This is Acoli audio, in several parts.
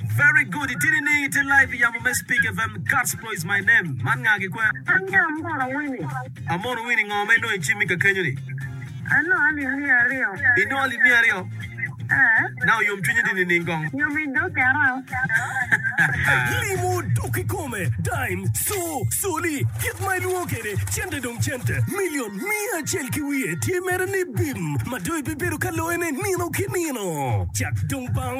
Very good itye nining itye live iyamo me speak fm God's glory is my name man nga gikwer. An ki Amono Winnie. Amono Winnie ngo ma inongo icimmi kakenyo ni? Anongo alim miya aryo. Inongo alim miya aryo? Ee. Now oyom cwinyi di nining kong? Yom i dog kera. Limo dok kikome, dime, co, coli, kit ma ilwongo kede cente dong cente, million, miya acel ki wiye tye mere ni bim ma dong ibibedo ka loyone nino ki nino. Cat dong bang.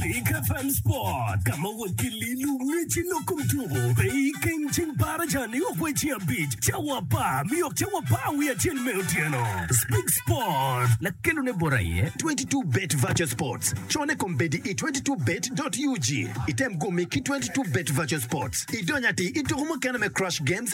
Pika Fun Sport, ka ma wakililo ngeci lok kom tuko pe i keng ceng para ca ni ok wai ceng abic cawa apar mi ok cawa apar wiye acel me otyeno. Speak Sport. Lakelone bot aye 22bet Virtual Sports. Cone kombeddi i 22bet.ug. Item gumi ki 22bet Virtual Sports idony atir i tuko mukene me Crush Games,